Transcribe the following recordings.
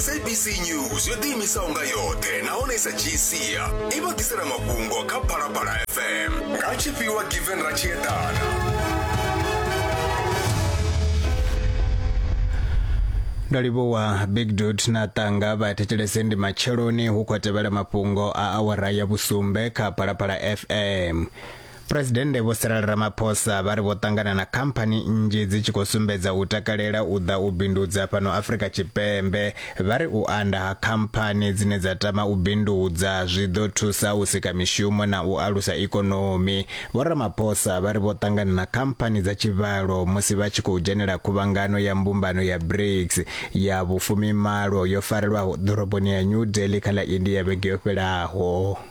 sabc news yo ḓiimisaho nga yoṱhe nahone i sa dzhii sia i vha ḓisela mafhungo kha phalaphala fm nga tshifhiwa given ra tshi eḓana ndo livhuwa big dut na tanga vha thetshelese ndi matsheloni hu khou tevhela mafhungo a awara ya vhusumbe kha phalaphala fm Phresidennde Vho Cyril Ramaphosa vha ri vho ṱangana na khamphani nnzhi dzi tshi khou sumbedza u takalela u ḓa u bindudza fhano Afrika Tshipembe. Vha ri u anda ha khamphani dzine dza tama u bindudza zwi ḓo thusa u sika mishumo na u alusa ikonomi. Vho Ramaphosa vha ri vho ṱangana na khamphani dza tshivhalo musi vha tshi khou dzhenela khuvhangano ya mbumbano ya BRICS ya vhufumimalo yo farelwaho ḓoroboni ya New Delhi kha ḽa India vhege yo fhelaho.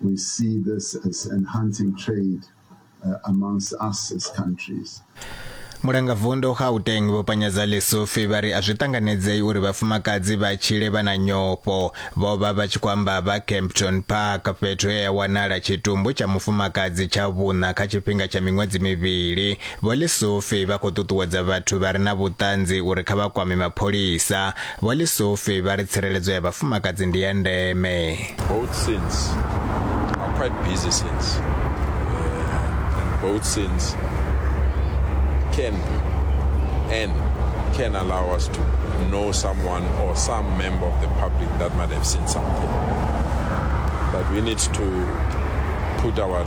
We see this as enhancing trade uh, amongst us as countries. mulangavundu gauteng vho panyadza lesufi vha ri a zwi ṱanganedzei uri vhafumakadzi vha tshile vha na nyofho vho vha vha tshi khou amba vha campton park fhethu he ya wanala tshitumbu tsha mufumakadzi tsha vhuṋa kha tshifhinga tsha miṅwedzi mivhili Vho Lesufi vha khou ṱuṱuwedza vhathu vha re na vhuṱanzi uri kha vha kwame mapholisa. Vho Lesufi vha ri tsireledzo ya vhafumakadzi ndi ya ndeme. Both sins are quite busy sins uh, and both sins can and can allow us to know someone or some member of the public that might have seen something. But we need to put our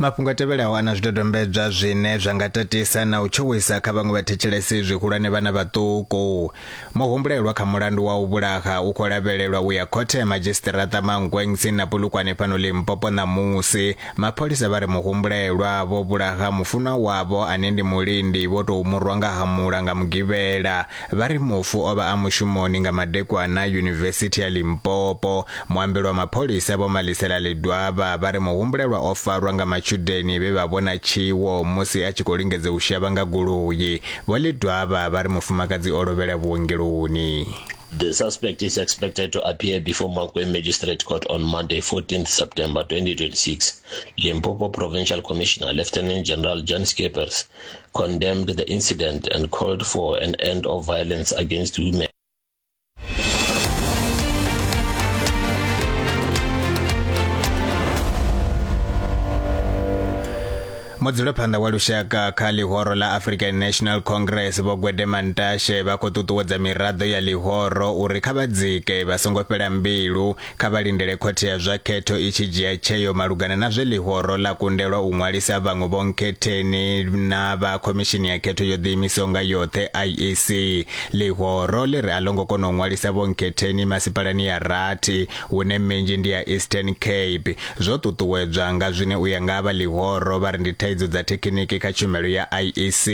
mafhungo a tevhelaho a na zwidodombedzwa zwine zwa nga tatisa na u tshuwisa kha vhaṅwe vhathetshelesi zwihulwane vhana vhaṱuku muhumbulelwa kha mulandu wa u vhulaha u khou lavhelelwa u ya khothe ya madzhisiṱiraṱa mankweng tsini na polukwane fhano limpopo ṋamusi mapholisa vha ri muhumbulelwa vho vhulaha mufunwa wavho ane ndi mulindi vho tou murwa nga hamula nga mugivhela Vha ri mufu o vha a mushumoni nga madekwana Yunivesithi ya Limpopo. Muambeli wa mapholisa Vho Malisela Ledwaba vha ri muhumbulelwa o farwa nga matshudeni vhe vha vhona tshiwo musi a tshi khou lingedza u shavha nga goloi. Vho Ledwaba vha ri mufumakadzi o lovhela vhuongeloni. The suspect is expected to appear before Mankweng Magistrate Court on Monday, 14th September 2026. Limpopo Provincial Commissioner Lieutenant General John Schippers condemned the incident and called for an end of violence against women. mudzulaphanḓa wa lushaka kha ḽihoro ḽa african national congress vho gwede mantashe vha khou ṱuṱuwedza miraḓo ya ḽihoro uri kha vha dzike vha songo fhela mbilu Kha vha lindele khothe ya zwa khetho i tshi dzhia tsheo malugana na zwe ḽihoro ḽa kundelwa u ṅwalisa vhaṅwe vhonkhetheni na vha Khomishini ya Khetho yo Ḓiimisaho nga Yoṱhe, IEC. Ḽihoro ḽi ri a ḽo ngo kona u ṅwalisa vhonkhetheni masipalani ya rathi, hune minzhi ndi ya Eastern Cape, zwo ṱuṱuwedzwa nga zwine u ya nga vha ḽihoro vha ri ndi thaidzo dza thekhiniki kha tshumelo ya IEC.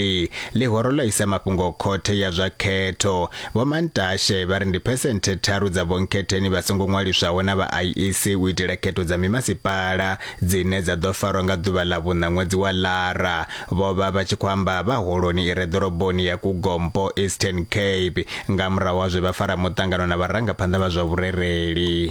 Ḽihoro ḽo isa mafhungo khothe ya zwa khetho. Vho Mantashe vha ri ndi phesenthe tharu dza vhonkhetheni vha songo ṅwaliswaho na vha IEC u itela khetho dza mimasipala dzine dza ḓo farwa nga ḓuvha ḽa vhuṋa ṅwedzi wa Lara. Vho vha vha tshi khou amba vha holoni i re ḓoroboni ya Kugompo, Eastern Cape, nga murahu ha zwe vha fara muṱangano na vharangaphanḓa vha zwa vhurereli.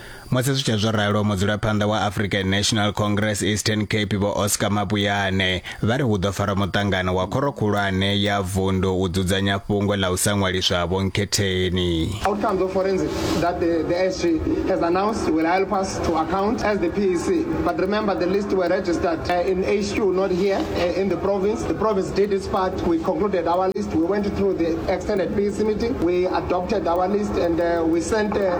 Musi zwi tshe zwo ralo, mudzulaphanḓa wa African National Congress Eastern Cape Vho Oscar Mabuyane vha ri hu ḓo farwa muṱangano wa khoro khulwane ya vundu u dzudzanya fhungo ḽa u sa ṅwaliswa ha vhonkhetheni. Outcomes of forensic that the, the SG has announced will help us to account as the PEC. But remember, the list were registered uh, in HQ, not here uh, in the province. The province did its part. We concluded our list. We went through the extended PEC meeting. We adopted our list and uh, we sent uh,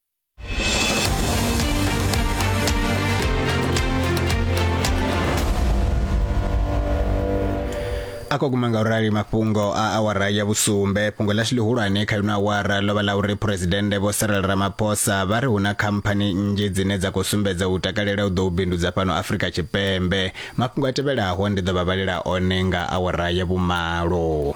a khou guma nga u rali mafhungo a awara ya vhusumbe fhungo ḽashu ḽihulwane kha ino awara ḽo vha ḽa uri phuresidennde vho sarel ramaphosa vha ri hu na khamphani nnzhi dzine dza khou sumbedza u takalela u ḓo u bindudza fhano afrika tshipembe mafhungo a tevhelaho ndi ḓo vha vhalela one nga awara ya vhumalo